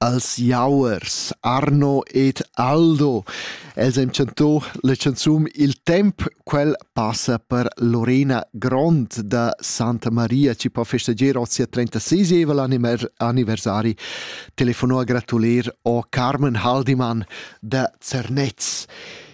als jauers Arno ed Aldo. Els han chanto la canzun Il temp, quel passa per Lorena Grond da Santa Maria, ci può festeggiare oggi a 36 anniversari. Telefonò a gratulir o Carmen Haldimann da Zernez.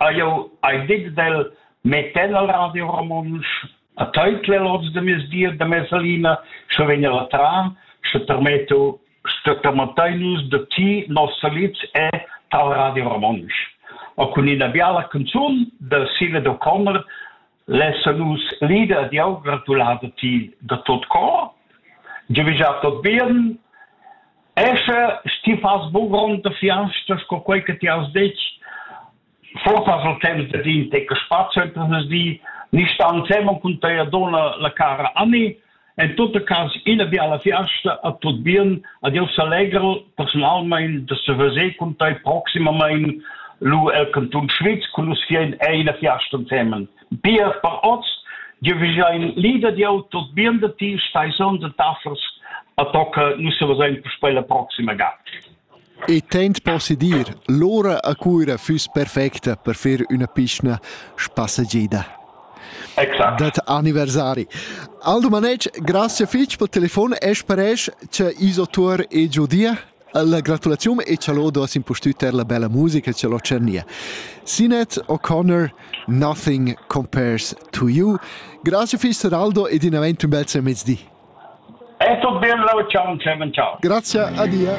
Ha jau hai dit d'el metter la radio romontsch a taitlel oz da mezdi e da mesalina, sche vegn el a tram, sche termetto sto termettain nus da ti nos salids e tal radio romontsch. O cun ina biala canzun da Sive d'O'Connor lessa nus l'ida di aunc gratulada ti da tot cor giuvisà tot bien escha sti fas bu grond da fiasta sco quei che ti has detg forsa sul temps da din te che spazio entras di ni stan semon cun tei dona la cara Anni En tot cas ina biala fiasta a tut bien, ad jau s'allegral personalmein da seveser cun tai proximamain lu el cantun Schwyz cun nus vien è ina fiasta ensemen. Bia per oz, Dir vesein lieder di auto bien da ti stai son de taffers a tocca nu se vesein per speila proxima ga. Il temps possi dir: l'ura a Cuira füss perfecta per fer üna piçna spassagieda. Exact. dad anniversari. Al Dumanetsch, grazie fich pel telefon e sparesch cha iso tuor e giudia la gratulaziun e cha lod has impustüt eir la bella musica cha l'ho tschernìa. Sinet O'Connor, Nothing Compares to You. Grazie fich Araldo ed in avent ün bel mezdi. E tut bel, ciao, Clemen, ciao. Grazie, adia.